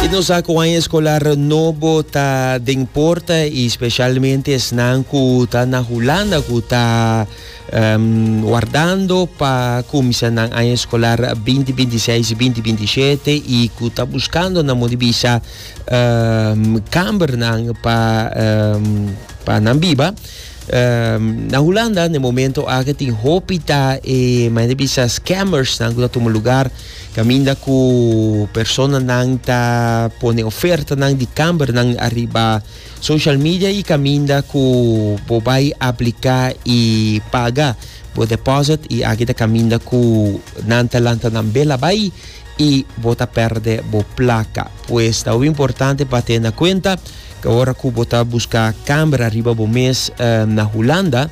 Y nos sa cu aña escolar nobo ta den porta y specialmente esnan cu ta na Hulanda cu ta wardando pa cuminsha nan aña escolar 2026-2027 y cu ta buscando nan modo di bisa cambernan pa pa nan biba. Na Hulanda na e momento aki tin hopi ta e maya di bisa scammers nan cu ta tuma lugar. Caminda cu personanan ta pone ofertanan di cambernan ariba social media y caminda cu bo bay aplica y paga bo deposit y aki ta caminda cu nan ta lanta nan bela bay y bo ta perde bo placa. Pues ta hopi importante pa tene na cuenta cu ora cu bo ta busca camber ariba bo mes na Hulanda,